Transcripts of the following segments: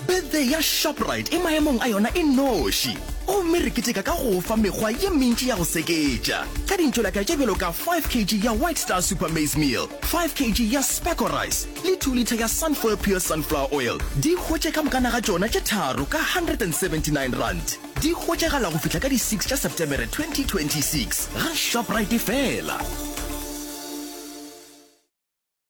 Birthday ya Shoprite e maemong a yona e noši, gomme re keteka ka go o fa mekgwa ye mentši ya go seketša ka dintšolaka tše bjalo ka 5 kg ya White Star Super Maize Meal, 5 kg ya Specco Rice le 2 litha ya Sunfoil Pure Sunflower Oil. Di hwetše ka mokana ga tšona tše tharo ka R179. Di hwetšagala go fihla ka di 6 tša Setemere 2026 ga Shoprite fela.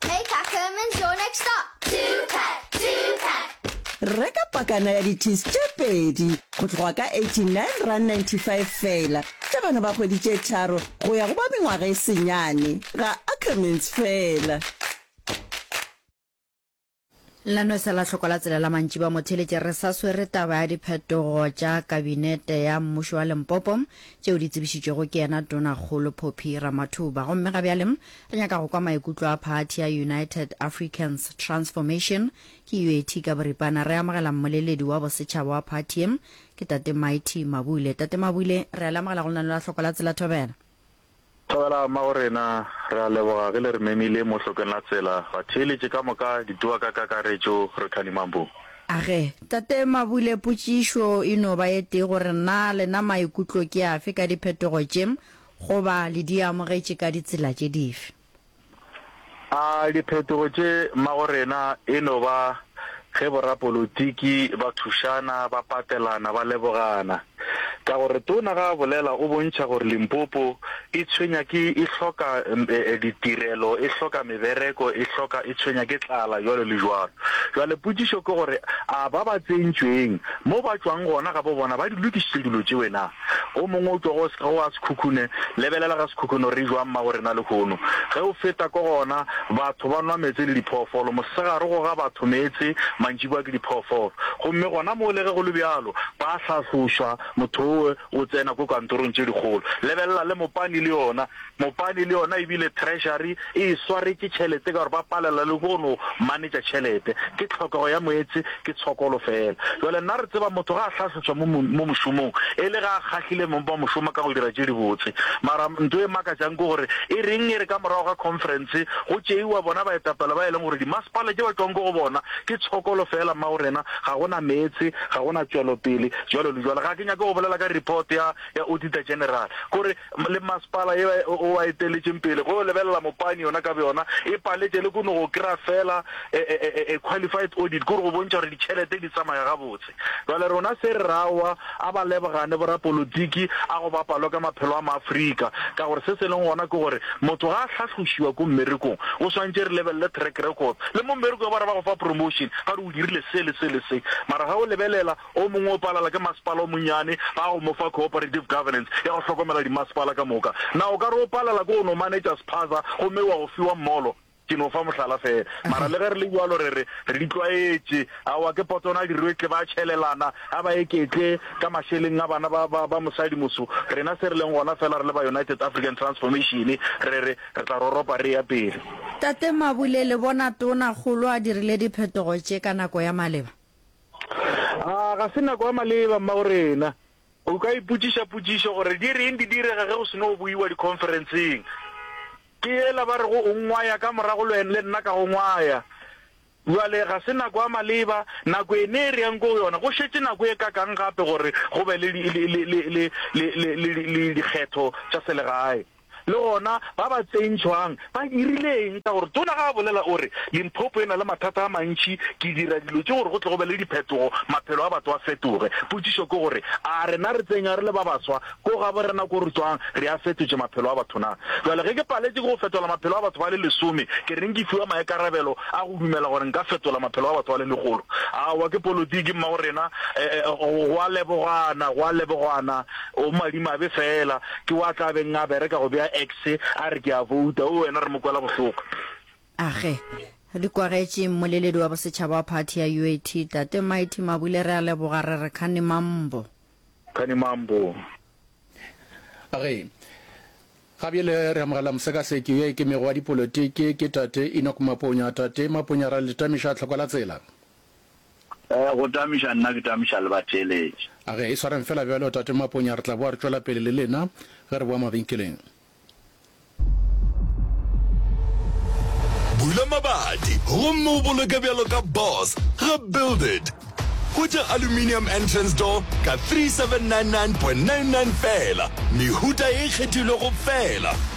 Take a sermon, your next stop. Two pack, two pack. Reka pakana ya di-teas tše pedi go tloga ka 89 rand 95 fela tša bana ba kgwedi tše tharo go ya go ba mengwaga e senyane ga Ackermans fela. La no se la hloko la tsela la mantši ba mo theletše re sa swere taba ya diphetogo tša kabinete ya mmušo wa Limpopo tšeo di tsebišitšwego ke yena Tonakgolo Phophi Ramathuba. Gomme ga bjale re nyaka go kwa maikutlo a phathi ya United Africans Transformation, ke UAT ka boripana. Re amogela mmoleledi wa bosetšhaba wa phathi ye, ke Tate Mighty Mabule. Tate Mabule, re a le amogela go lenaneo la Hloko la Tsela Thobela. Tlogela mma go rena, re a leboga ge le re memile mo hlokeng la tsela, batheeletše ka moka, dituwa ka kakaretšo, re kgadimang bo. Age. Tate Mabule, potšišo e no ba e tee gore na lena maikutlo ke afe ka diphetogo tše, goba le di amogetše ka ditsela tše dife? A diphetogo tše mmagorena e no ba ge borapolotiki ba thušana, ba patelana, ba lebogana? Ka gore Tona ga a bolela o bontšha gore Limpopo e tshwenya ke, e hloka ditirelo, e hloka mebereko, e hloka, e tshwenya ke tlala, jwalo le jwalo. Jwale potšišo ke gore a ba ba tsentšweng mo ba tšwang gona gabo bona ba di lokišitše dilo tšeo na? Go mongwe o tlogo ge o a sekhukhune, lebelela ga sekhukhune gore e jwang mago rena lehono. Ge o feta ko gona, batho ba nwa meetse le diphoofolo. Mosegare go ga batho meetse, mantšibwa ke diphoofolo. Gomme gona moo le ge go le bjalo, ba a hlahlošwa, motho owe o tsena ko kantorong tše dikgolo. Lebelela le mopane le yona. Mopani le yona e bile Treasury e e swaretše tšhelete ka gore ba palela le go no manetša tšhelete. Ke tlhokego ya moetse, ke tshokolo fela. Jwale nna re tseba motho ga a hlahlotšwa mo mo mošomong e le ge a kgahlile mong ba mošoma ka go dira tše dibotse. Mara nto e makatšang ke gore e reng e re ka morago ga conference go tšeiwa bona baetapele ba e leng gore dimasepala tše ba tšwang ko go bona ke tshokolo fela mao rena ga go na meetse, ga go na tšwelopele, jwalo le jwalo. Ga ke nyake go bolela ka report ya ya Auditor General gore le mmasepala ye o a eteletšeng pele go yo lebelela mopani yona ka byona e paletše le kono go kry-a fela e, e, e, e qualified audit kore go bontšha gore ditšhelete di tsamaya gabotse jale rona se re rawa a ba lebogane borapolotiki a go ba palo ka maphelo a maafrika ka gore se se leng gona ke gore motho ga a tlhatlhošiwa ko mmerekong o swantše re lebelele track record le mo mmerekong ba re ba go fa promotion ga re o dirile se le se le se mara ga o lebelela O mongwe o palala ke masepala o monnyane, ba go mo fa cooperative governance ya go hlokomela dimasepala ka moka. Na o ka re o palala ke go no manetša sephaza gomme wa go fiwa molo? Ke no fa mohlala feela. Mara le ge re le bjalo re re, re di tlwaetše. Aowa, ke potsona a dirwetle ba tšhelelana, a ba eketle ka mašeleng a bana ba, ba, ba mosadi moso. Rena se re leng gona feela re le ba United African Transformation re re, re tla roropa re eya pele. Tate Mabule, le bona Tona kgolo a dirile diphetogo tše ka nako ya maleba? A ga se nako ya maleba, mmagorena? O ka ipotšiša potšišo gore, Di reng di direga ge go se no boiwa dikhonferenseng? Ke yela ba rego o ngwaya ka morago le le nna ka go ngwaya. Bjale, ga se nako ya maleba, nako e ne e re yang ko go yona. Go šetše nako e kakang gape gore go be le, le, le, le, le, le, le, le, le dikgetho tša selegae? Le gona, ba ba tsentšhwang ba dirile eng? Ka gore tona ga a bolela, o re, Limpopo e na le mathata a mantši. Ke dira dilo tše gore go tle go be le diphetogo, maphelo a batho a fetoge. Potšišo ke gore, a rena re tsenywa re le ba baswa ko gaborena ko re tšwang, re a fetotše maphelo a batho na? Bjale, ge ke paletše ke go fetola maphelo a batho ba le lesome, ke reng ke fiwa maikarabelo a go dumela gore nka fetola maphelo a batho ba le lekgolo? Aowa, ke politiki, mmagorena. Go a lebogwana, go a lebogwana. O madimabe fela, ke wo a tla beng a bereka go bea X a re ke a vouta. Oo, wena re mo kwela bohloko. Age, Re kwagetše mmoleledi wa bosetšhaba wa phathi ya UAT, Tate Mighty Mabule re a leboga, re re Khani Mambo. Khani Mambo. Age, Ga bjele re amogela mosekaseki yo a ikemego wa dipolotiki, ke Tate Enoch Maponya. Tate Maponya re a le tamiša tlhoko la tsela. Go tamiša nna ke tamiša le batheeletši. A ge e swareng fela bjalo, Tate Maponya, re tla boa re tšwela pele le lena ge re boa mabenkeleng. Bula mabati gomme o boloke bjalo ka boss ga Build It. Hwetša aluminium entrance door ka 3799.99 feela, mehuta e ikgethilwego feela.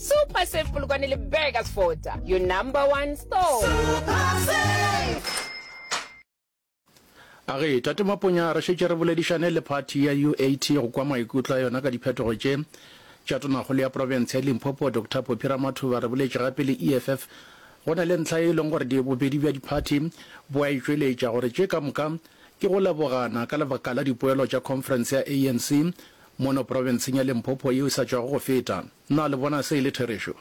Super Safe Polokwane le Burgers Fota, your number one store. Super Safe! A re, Tate Maponya, re šetše re boledišane le phathi ya UAT go kwa maikutlo a yona ka diphetogo tše tša tonakgolo ya profense ya Limpopo, Doctor Phophi Ramathuba. Re boletše gape le EFF go na le ntlha e leng gore di bobedi bja diphathi bo a e tšweletša gore tše ka moka ke go lebogana ka lebaka la dipoelo tša khonferense ya ANC Mono profenseng ya Limpopo yeo e sa tšwago go feta, na le bona se e le therešo?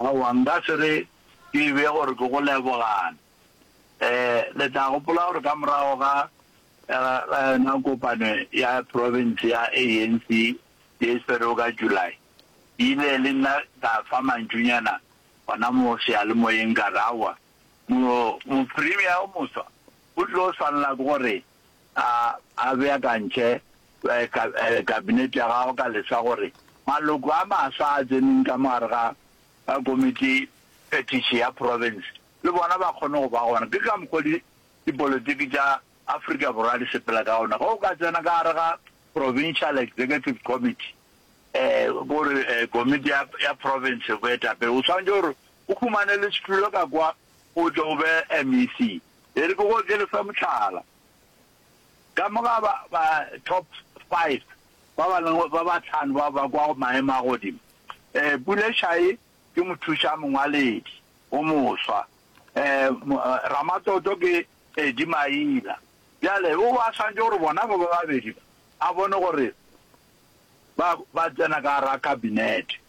Aowa, nka se re ke be gore ke go lebogana. Ee, le tla gopola gore ka morago ga, ga yona kopano ya profense ya ANC ye e swerego ka July, ke ile le nna ka fa mantšunyana gona mo seyalemoyeng ka re, Aowa, mo, mopremier yo mofsa o tlo swanela ke go re A a beakantšhe Kabinete ya gagwe ka lesa gore maloko a mafsa a tseneng ka mo gare ga Komiti Phetiši ya Profense le bona ba kgone go ba gona. Ke ka mokgwa o dipolotiki tša Afrika Borwa di sepela ka gona. Ge o ka tsena ka gare ga Provincial Executive Committee, gore Komiti ya ya Profense, Boetapele, o swanetše gore o humane le setulo ka kwa o tle o be MEC. E re ke go okele sa mohlala. Ka mo ga ba, ba top five ba ba leng, ba ba tlhano ba ba kwa go maemo a godimo, eh, Puleshae ke mothuša mongwaledi o moswa, eh, Ramatoto ke Edi Maina. Bjale o ba swantše gore bona ba ba babedi ba a bone gore ba, ba tsena ka gara kabinete.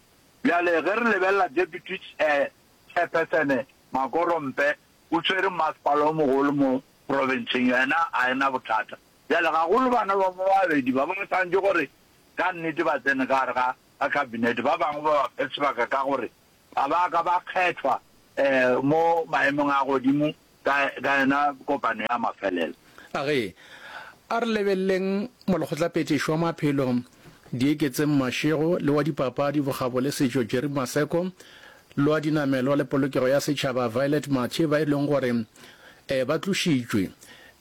Bjale ge re lebelela Deputy, eh, Chairperson Makorompe o tšwere mmasepala o mogolo mo profenseng, yena a e na bothata. Bjale, gagolo bana ba mo babedi ba, ba swanetše gore ka nnete ba tsene ka gare ga, ga Kabinete. Ba bangwe ba ba fe sebaka ka gore ga ba a ka ba kgethwa, ee, mo maemong a godimo ka, ka yona kopano ya mafelelo. A re, A re lebeleleng Molekgotlaphethiši wa Maphelo, Dieketseng Mashego, le wa Dipapadi, Bokgabo le Setšo, Jerry Maseko, le wa Dinamelwa le Polokego ya Setšhaba, Violet Mathe, ba e leng gore um ba tlošitšwe.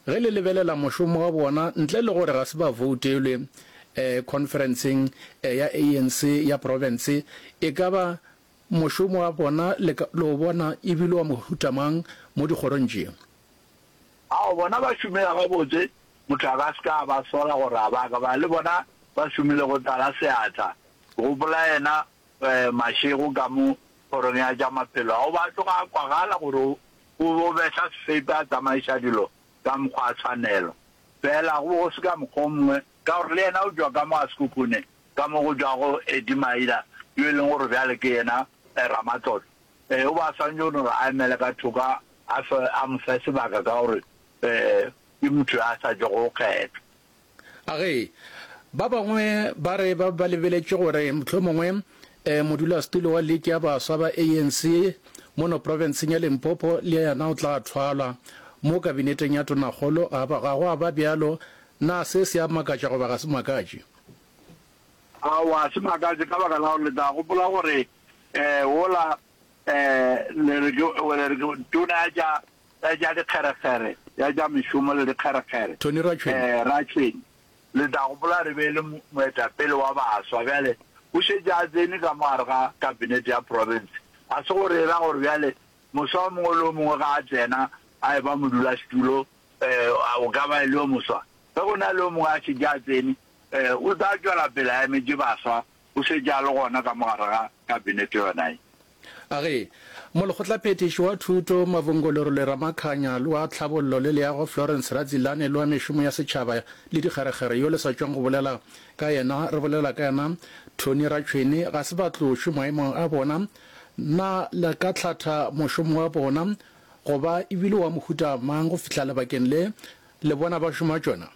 Ge le lebelela mošomo wa bona, ntle le gore ga se ba voutelwe um khonferenseng ya ANC ya profense, e ka ba mošomo wa bona le o bona e bile wa mohuta mang mo dikgorong tše? Ao, bona ba šomega gabotse, motho a ka se ka a ba sola gore a ba ka ba le bona ba šomile go tlala seatla. Gopola yena mašego ka mo Kgorong ya tša Maphelo a go ba a tloga a kwagala gore o bo behla sefepi a tsamaiša dilo ka mokgwa a tshwanelo. Feela go be go se ka mokgwa o mongwe, ka gore le yena o tšwa ka mo a sekhukhune ka mo go tšwago Edimaila, yo e leng gore bjale ke yena ramatlotlo. Ee, o be a swantše go no re a emele ka thoko a fe, a mo fe sebaka ka gore ke motho yo a sa tšwago go kgethwa. A ge, ba bangwe ba re ba be ba lebeletše gore mohlomongwe modulasetulo wa liki ya baswa ba ANC mono profenseng ya Limpopo le yena o tla thwalwa mo kabineteng ya tonakgolo. Ga ba, ga go a ba bjalo. Na se se a makatša goba ga se makatše? Aowa, ga se makatše ka baka la gore le tla gopola gore Eh, wola, eh, le re ke, o le re ke tona ya tša, ya tša dikgerekgere, ya tša mešomo le dikgerekgere. Tony Ratšhwene. Eh, Ratšhwene, le tla gopola re be e le mo, moetapele wa baswa. Bjale, o šetše a tsene ka mo gare ga kabinete ya profense. Ga se gore e ra gore bjale moswa o mongwe le o mongwe ga a tsena a e ba modulasetulo, eh, a, o ka ba e le yo moswa. Ge go na le yo mongwe a šetše a tsene, eh, o tla tšwela pele a emetše baswa o šetše a le gona ka mo gare ga Kabinete yona ye. A re, Molekgotlaphethiši wa Thuto, Mavhongolorule Ramakhanya, le wa Tlhabollo le Leago, Florence Radzilane, le wa Mešomo ya Setšhaba le Dikgerekgere yo le sa tšweng go bolela ka yena, re bolela ka yena, Tony Ratšhwene, ga se ba tlo šwe maemong a bona. Na le ka hlatha mošomo wa bona, go ba e bile wa mohuta mang go fihla lebakeng le le bona ba šoma tšona?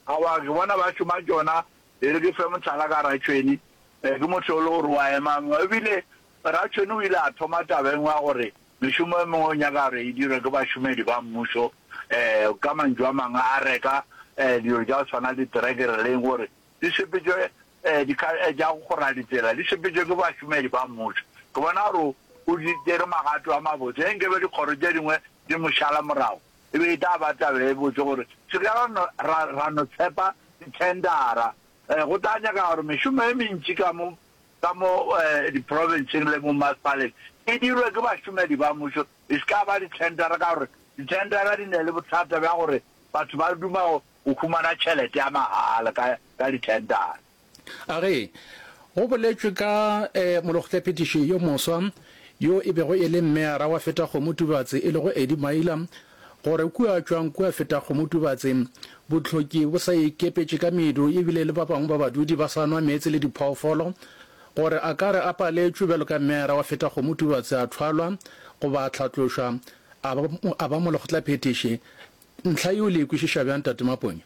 Aowa, ke bona ba šoma tšona E re ke fe mohlala ka Ratšhweni. Ke motho yo e le gore o a ema. Ebile Ratšhweni o ile a thoma taba e nngwe ya gore mešomo e mengwe o nyaka gore e dirwe ke bašomedi ba mmušo. Ka mantšu a mangwe a reka dilo tša go tshwana le diterekere le eng gore di sepetšwe tša go kgora ditsela, di sepetšwe ke bašomedi ba mmušo. Ke bona gore o di tšere magato a mabotse. Ge nkabe dikgoro tše dingwe di mo šala morago, e be e tla ba taba e botse gore se ka ra no, ra, ra no tshepa dithendara. Eh, go tla nyaka gore mešomo e mentši ka mo, ka mo eh, diprofenseng le bommasepaleng e dirwe ke bašomedi ba mmušo, e se ka ba dithendara, ka gore dithendara di ne le bothata bja gore batho ba duma go, go humana tšhelete ya mahala ka, ka dithendara. A re go boletšwe ka molokgotlaphetiši yo moswa yo e bego e le mmeara wa Fetakgomo Tubatse e lego Eddie Maila gore kua tšwang kua Fetakgomo Tubatse bohloki bo sa ikepetše ka medu ebile le ba bangwe ba badudi ba sa nwa meetse le diphoofolo gore a ka re a paletšwe bjalo ka mmeara wa Fetakgomo Tubatse a thwalwa goba a hlatlošwa a ba molokgotlaphetiši ntlha yeo le e kwešiša bjang Tate Maponya?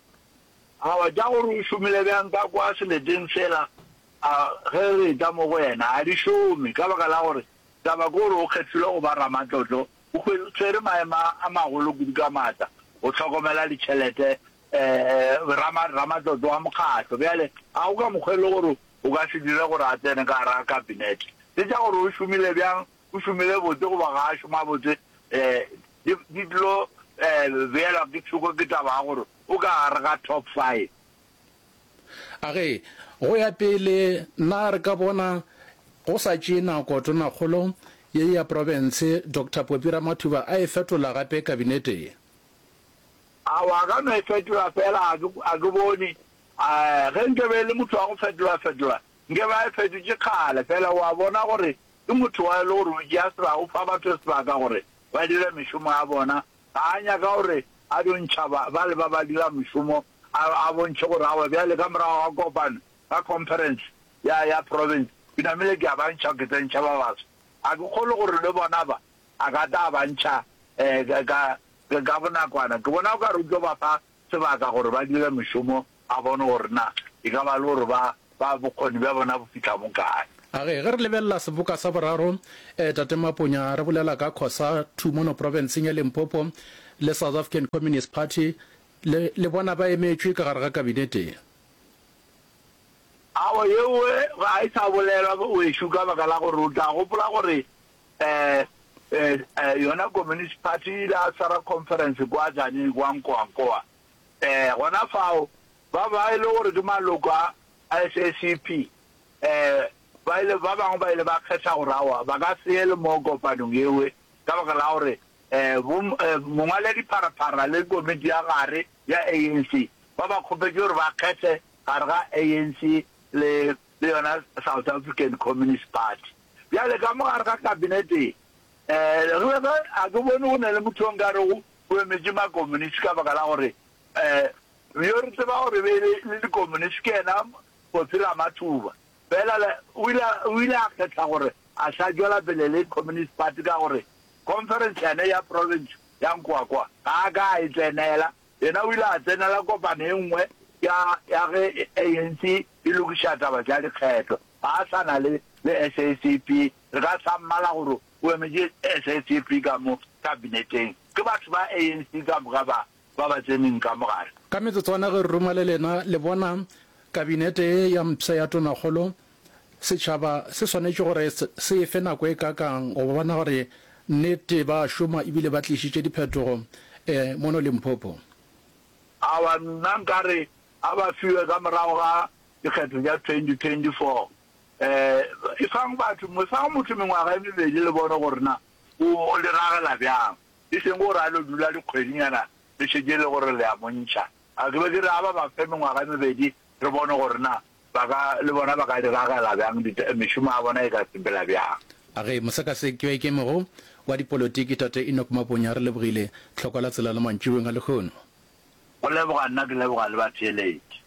A wa tša gore o šomile bjang ka kwa seleteng sela, a ge re etla mo go yena? A di šome, ka baka la gore taba ke gore o kgethilwe go ba ramatlotlo, o hwetšere maemo a magolo kudu ka maatla go hlokomela ditšhelete, rama, ramatlotlo wa mokgatlo. Bjale, a go ka mokgwa e le gore o ka se dire gore a tsene ka gare ga Kabinete? Tše tša gore o šomile bjang O šomile botse goba ga a šoma botse, di di tlo beelwa ke thoko ke taba ya gore o ka gare ga top five. A re, Go ya pele na re ka bona go sa tšee nako Tonakgolo ye ya profense Doctor Poppy Ramathuba a e fetola gape Kabinete ye? Aowa, a ka no e fetola feela, ga ke, ga ke bone. Ge nkabe e le motho wa go fetola-fetola, nkabe a e fetotše kgale. Feela o a bona gore Ke motho wa e le gore o tšea sebaka, o fa batho sebaka gore ba dire mešomo ya bona. Ga a nyaka gore a dio ntšha ba, bale ba ba dira mešomo, a, a bontšhe gore aowa bjale ka morago ga kopano, ka conference ya, ya province, ke namile ke a ba ntšha, ke tsentšha ba baswa. Ga ke kgolwe gore le bona ba, a ka tla a ba ntšha, um, ka, ka, ka bonakwana. Ke bona o ka re o tlo ba fa sebaka gore ba dire mešomo ba bone gore na e ka ba le gore ba ba bokgoni bja bona bo fihla mo kae. A ge ge re lebelela seboka sa boraro, eh, Tate Maponya, re bolela ka Khosa Two mono profenseng ya Limpopo le South African Communist Party, le, le bona ba emetšwe ka gare ga kabinete ye. Aowa, yeo ga e sa bolelwa, wešu, ka baka la gore o tla gopola gore Yona Communist Party e ile ya swara conference kwa Tzaneen, kwa Nkoankoa. Gona fao, ba ba e le gore ke maloko a SACP, ba ile, ba bangwe ba ile ba kgetha gore aowa, ba ka se ye le moo kopanong yeo, ka baka la gore bo mongwaladipharapharra le komiti ya gare ya ANC ba ba kgopetše gore ba kgethe gare ga ANC le le yona South African Communist Party. Bjale ka mo gare ga kabinete ye, eh, re be re, ga ke bone go na le motho o nka rego o emetše makomunisi ka baka la gore, eh, yo re tseba gore be le, le dikomunisi ke yena Kgosi Ramathuba. Fela le, o ile, o ile a kgetha gore a sa tšwela pele le Communist Party ka gore conference yane ya province ya Nkoakwa ga a ka a e tsenela Yena o ile a tsenela kopano e nngwe ya, ya ge ANC e lokiša taba tša dikgetho. Ga a sa na le, le SACP. Re ka sa mmala gore o emetše SACP ka mo Kabineteng. Ke batho ba ANC ka moka ba, ba ba tseneng ka mo gare. Ka metsotswana ge re ruma le lena, le bona, Kabinete ye ya mpsha ya Tonakgolo, Setšhaba se swanetše gore se e fe nako e kakang go bona gore nnete ba a šoma ebile ba tlišitše diphetogo e mono Limpopo? Awa, nna nkare a ba fiwe ka morago ga dikgetho tša 2024. Efang batho, mofang motho mengwaga e mebedi le bone gore na o diragela bjang, e seng gore a lo dula dikgwedinyana le šetše e le gore le a mo ntšha. A ke be ke re a ba ba fe mengwaga e mebedi re bone gore na ba ka, le bona ba ka diragela bjang, dita, mešomo ya bona e ka sepela bjang. A re mosekasekweikemego wa dipolotiki Tate Enoch Maponya a re lebogile tlhoko la tsela la mantšiboeng a lehono. Go leboga nna ke leboga le batheeletši.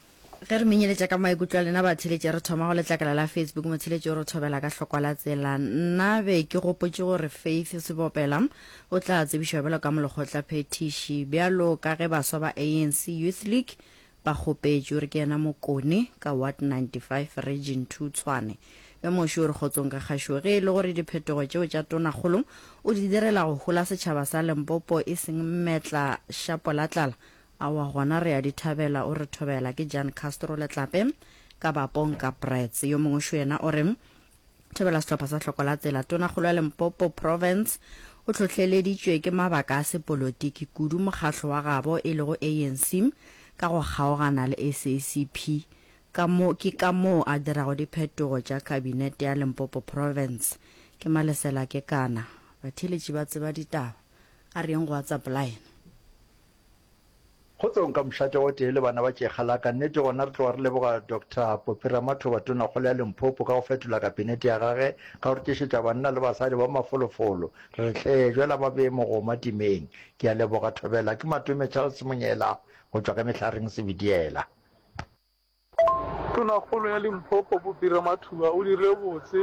Ge re menyeletša ka maikutlo a lena batheeletši re thoma go letlakala la Facebook motheeletši o re thobela ka hlokwa la tsela Nna be ke gopotše gore Faith Sebopela o tla tsebišwa bjalo ka molekgotlaphethiši bjalo ka ge baswa ba ANC Youth League Bakgopetšo, re ke yena Mokone, ka Ward 95, Region Two, Tshwane. Yo moše o re kgotsong ka kgašo ge e le gore diphetogo tšeo tša Tonakgolo o di direla go hola setšhaba sa Limpopo e seng mmetla šapolatlala. Aowa gona re a di thabela, o re thobela. Ke Jan Castro Letlape, ka Bapong ka Brits. Yo mongwe šo yena o re, Thobela sehlopha sa hloko la tsela. Tonakgolo ya Limpopo Province o hlohleleditšwe ke mabaka a sepolotiki kudu mokgahlo wa gabo e lego ANC ka go kgaogana le SACP ka mo ke ka moo a dirago diphetogo tša kabinete ya Limpopo Province. Ke Malesela Kekana. Batheeletši ba tseba ditaba. A re yeng go WhatsApp line. Go tso nka mošate o tee le bana ba tšekga la ka. Nnete gona re tloga re leboga Doctor Poppy Ramathoba, Tonakgolo ya Limpopo, ka go fetola Kapenete ya gage ka go re tšešetša banna le basadi ba mafolofolo. Re re hle, jwela ba bee mogoma timeng. Ke a leboga, Thobela. Ke Matome Charles Monyela go tšwa ka Mehlareng Sebediela. Tonakgolo ya Limpopo Bopira Mathuba o dirile botse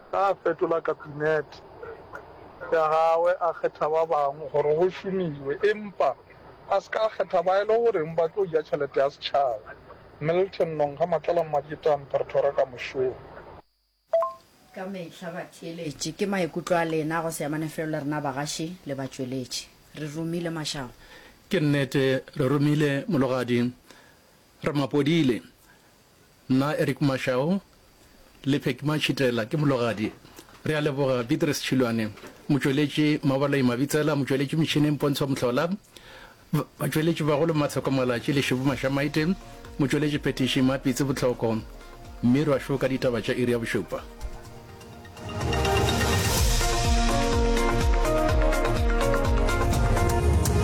ge a fetola Kapinete ya gagwe a kgetha ba bangwe gore go šomiwe empa a se ka a kgetha ba e le goreng ba tlo ja tšhelete ya setšhaba, Milton Nongha Matlala Mmadikitane Pretoria ka mošomo. ka mehla batheeletši. Ke maikutlo a lena go se amane felo le rena bagaši le batšweletši. Re romile Mashago. Ke nnete, re romile Mologadi Ramapodile. Nna Eric Mashago le Phecky Matšhitela, ke Mologadi. Re a leboga Beatrice Tšhilwane, motšweletši Mabaloi Mabitsela, motšweletši metšhineng Pontsho Mohlola, Batšweletši bagolo Mathoko Malatši le Šebo Mašamaite, motšweletši phetiši Mapitsi Botlhoko, mme re a šoka ditaba tša iri ya bošupa.